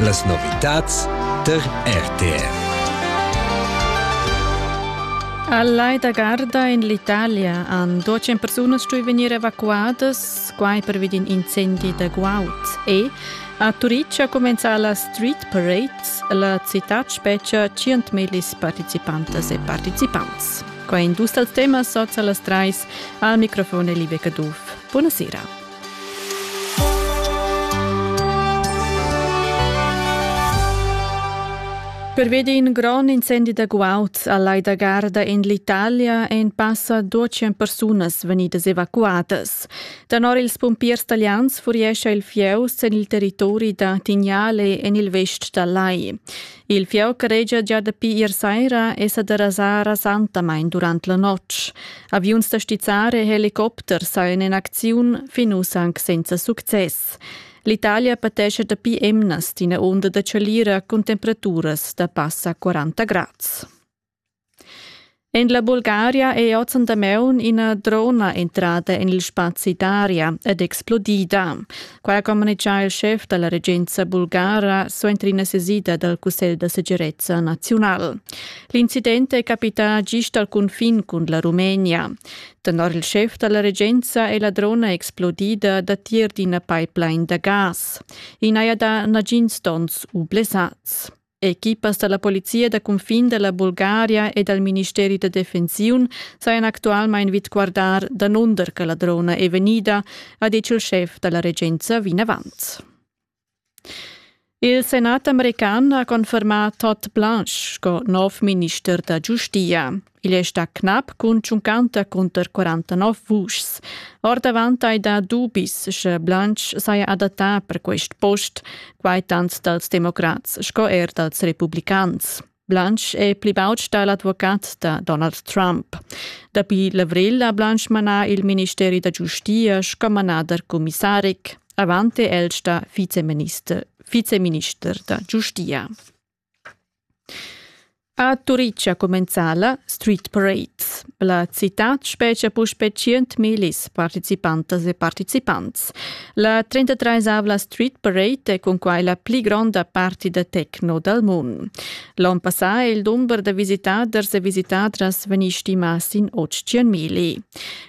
Las novitads tar RTR. A Lai da Garda in l'Italia han duecen persunas stui vegnir evacuadas, quai pervi d'in incendi da guaud. E a Turitg ha cumenzà la Street Parade, la citad spetga 100.000 participantas e participants. Qua in dus dals temas sots a las trais al microfon è Live Caduff. Buonasera. Pervedi in grond incendi da guaud a Lai da Garda en l'Italia ein passa 200 persunas vegnidas evacuadas. Danor ils pumpiers italians furiescha il fieu sin il territori da Tignale en il vest dal lai. Il fieu caregia gia dapi ier saira è sa derasà rasantamain durant la notg. Aviuns da stizzare e helicopters sajan in acziun fin uss anc senza success. L'Italia patescha dapi emnas d'ina onda da chalira cun temperaturas da passa 40 grads. En la Bulgaria è oz en damaun ina drona entrada en il spazi d'aria ed explodida. Qua ha communitgà il schef da la regenza bulgara suenter ina sesida dal Cussegl da segirezza naziunal. L'incident è capità gist al cunfin cun la Rumenia. Tenor il schef da la regenza è la drona explodida datier d'ina pipeline da gas. I n'haja dà nagins donns u blessads. Equipas da la polizia da cunfin da la Bulgaria e dal ministeri da defensiun sajan actualmain vid guardar danunder che la drona è vegnida, ha ditg il schef da la regenza vinavant. Il senat american ha confermà Todd Blanche sco nov minister da giustia. Igl è stà knap cun tschuncanta cunter 49 vuschs. Ordavant hai dà dubis, sche Blanch saja adattà per quest post, quai tant dals democrats sco er dals republicans. Blanch è pli baud stà l'advocat da Donald Trump. Dapi l'avrel ha Blanch manà il ministeri da giustia sco manader commissaric. Avant è el stà viceminister, viceminister da giustia. A Turitg ha cumenzà la Street Parade. La citad spetga puspè 100.000 participantas e partecipants. La 33-avla Street Parade è cunquai la pli gronda parti da techno dal mund. L'onn passà è il dumber da visitaders e visitadras vegnì stimà sin 800.000.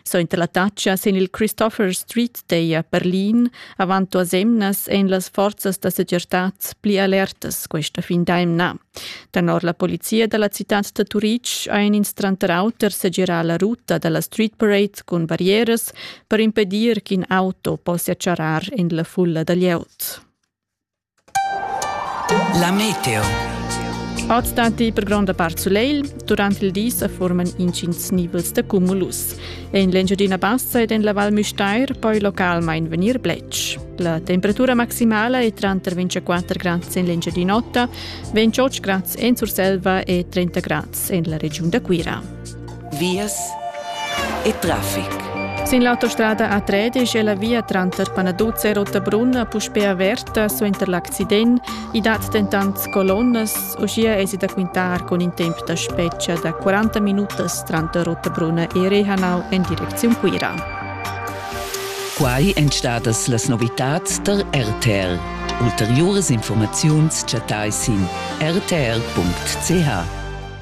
Suenter la tatga sin il Christopher Street teia Berlin avant duas emnas ein las forzas da segirtad pli alertas questa fin d'emna. Tenor la polizia dalla citad da Turitg ein ins tranter auter segirar la ruta dalla Street Parade cun barrieras per impedir ch'in auto possia charrar en la fulla da glieud. La meteo. Oz datti per gronda part sulegl. Durant il di sa forman intgins nivels da cumulus. En l'Engiadina Bassa ed en la Val Müstair poi localmain vegnir bletsch. La temperatura maximala è tranter 24 grads en l'Engiadin'Ota, 28 grads en Surselva e 30 grads en la regiun da Cuira. vias e traffic. Sin l'autostrada A3 è la via tranter Panaduzza e Rottabrunna puspè averta suenter l'accident. I dat dentant colonnas, uschia esi da quintar con in temp da spetga da 40 minutas tranter Rottabrunna e Rehanau en direcziun Cuira. Quai èn stadas las novitads tar RTR. Ulteriuras informaziuns chattai sin rtr.ch.